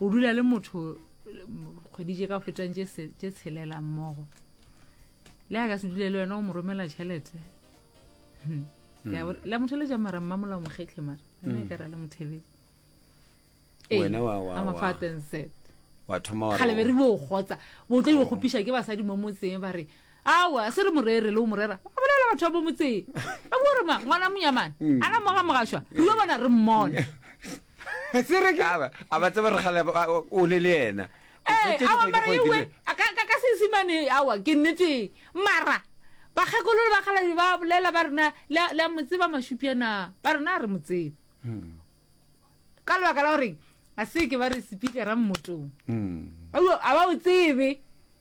o dula le motho kgwedi tše ka fetang tše tshelela mmogo le a ka se dule le wena o mo romela tšhelete hmm. Hmm. la motheletša mara mmamola o mokgetlhe mara ena hmm. e kara le mothebedi kgale be re bo gotsa bo tlo ikgopiša ke basadi mo motseng ba re awa se re morere le o morera ba bolela batho ba bo motseng ba bo re ma ngwana monyamane ana moga mogašwa re yo bona re mmone a ba tseba re gale o le le ena ka sesimane awa ke nnete mara bakgekolo ba galabi ba bolela ba rena la mo tseba mashupiana ba rena a re mo tsebe hmm. ka lebaka la goreng a se ke ba re sepikera mmotong hmm. a ba o tsebe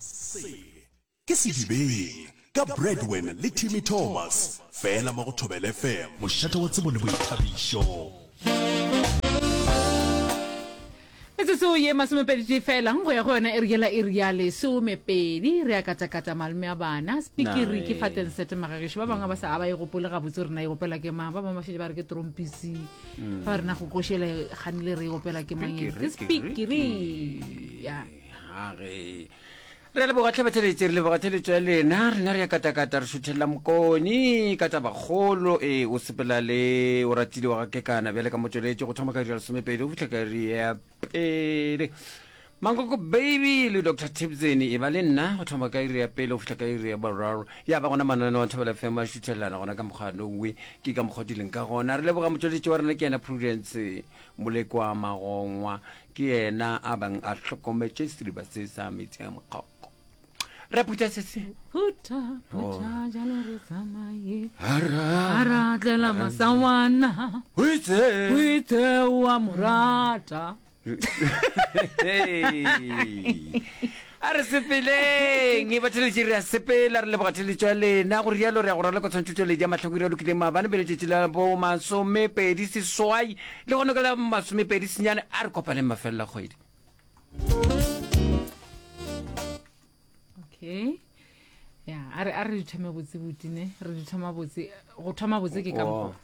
Se ke Sedibeng ka Bradwen le Timmy Thomas fela mo go Thobela FM. Mošate wa tsebo le boithabišo. Metsotso ye masomepeditee fela go ya go yona e re yela e re ya lesomepedi re a katakata malome a bana spikiri ke fateng sete magageši ba bangwe ba sa a ba e gopole gabotse gore na e gopela ke mang ba bangwe ba šetse ba re ke trompisi ba rena go košele ganile re e gopela ke mang ke spikiri ya gage re leboga tlhabatheletše re leboga theletšo ya lena rena re ya katakata re šuthelela mokoni ka tabakgolo e o sepela le o ratile wa gakekana bjale ka motsweletše go thoma ka dira lesomepedi go fitlha ka ri ya pele mankoko baby le dr tibseni e ba le nna go thoma ka iri ya pele go fitlha ka iri ya boraro ya ba gona mananeo a thobela fm a šuthelelana gona ka mokgwa nongwe ke ka mokgwa dileng ka gona re leboga motsweletše wa rena ke yena prudence Molekwa Magongwa ke yena a bang a hlokometše sediba se sa metsi a mokgoko. Re phutha se se. Phutha, phutha, oh. jalo re tsamaye. Hara. Hara tlela masawana. O itse. O itse wa morata. Hey. A re sepeleng, e ba theletše re a sepela, re leboga theletšo ya lena, go rialo re ya go raloka tshwantšhotšweledi ya mahloko ira lokileng maabane pele tšetši la bo masomepedi seswai le gone ka la masomepedi senyane a re kopaneng mafelela kgwedi. Okay. Ya, a re a re di thome botse botine, re di thoma botse, go thoma botse ke ka Oh. mokgwa.